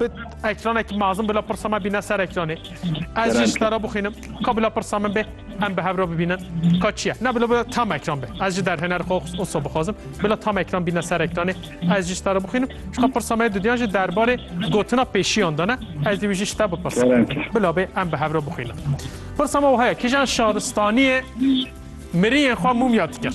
Bi ekranekî mezin bila pirsa me bîne ser ekranê. Ez jî ji te re bixwînim. Ka bila pirsa min bê em bi hev re bibînin ka çi ye. Ne bila bila tam ekran be. Ez jî derhêner xwe wisa bixwazim. Bila tam ekran bîne ser ekranê. Ez jî ji te re bixwînim. Ji xwe pirsa me yê dudiyan jî derbarê gotina pêşiyan de ne. Ez dî wî jî ji te bipirsim. Bila bê em bi hev re bixwînin. Pirsa me wiha ye, kîjan şaristaniyê miriyên xwe mûmya dikir?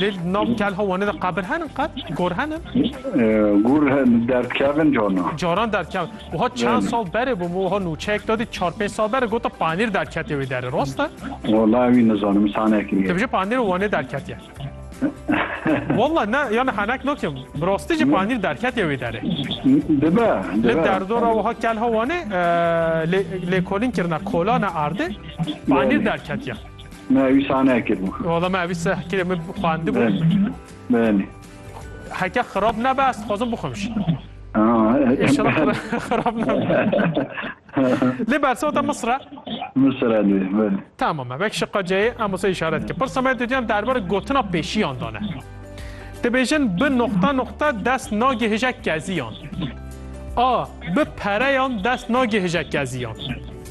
Lê di nav telha Wanê de qabir henin qet? Gor henin? Gor henin, derdkevin canan. Caran derdkevin. Wiha çend sal berê bû min wiha nûçeyek da dît çar pênc sal berê gota panîr derketiye wê derê. Rast e? Wala ewî nizanim sanekî ye. Dibije panîr Wanê derketiye. Wala ne yani henek nakim. Bi rastî jî panîr derketiye wê derê. Dibe. Li derdora wiha telha Wanê lêkolîn kirine kolane erdê panîr derketiye. Me ewî sah nekiribû. Wala me ewî sah kirê min xwendibû. Belê. Heke xirab nebe ez dixwazim bixwim jî. İnşallah xirab nebe. Lê bersota Mısra? Mısra lê, belê. Tamam, vek şıqqa ceyê em wisa işaret ki. Pırsa me didiyam derbar gotina pêşiyan dane. Dibêjin bi nokta nokta dest nagihije keziyan. A. Bi pereyan dest nagihije keziyan.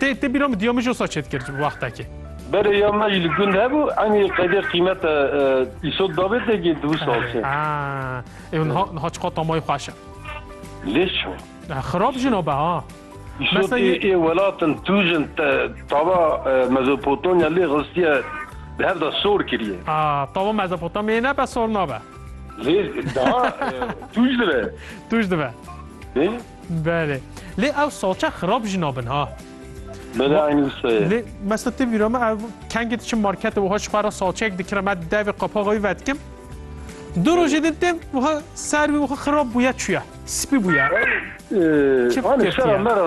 Dê te bîra min diya min jî wisa çêt kir wextekê. Berê ya me jî li gund hebû enî qedê qîmete îsot dabê te gê du sal çê. Ew niha niha çiqa tamayê xweş e. Lê çi? Xirab jina be ha. Îsotê ê welatin tûjin tava Mezopotamya lê xistiye bi hev de sor kiriye. Tava Mezopotamyayê nebe sor nabe. Lê daha tûj dibe. Tûj dibe. Belê. Lê ew salçe xirab jî nabin ha. Belê Ma- aynî wisa ye. Lê mesela tu vîra me ev kengê diçim markete wiha ji xwe re salçeyek dikirim me devê qapaxa wî vedikim. Du rojê din têm wiha ser wî wiha xirab bûye çûye. Spî bûye. Ee, Çi Hani fikir şera ye? mera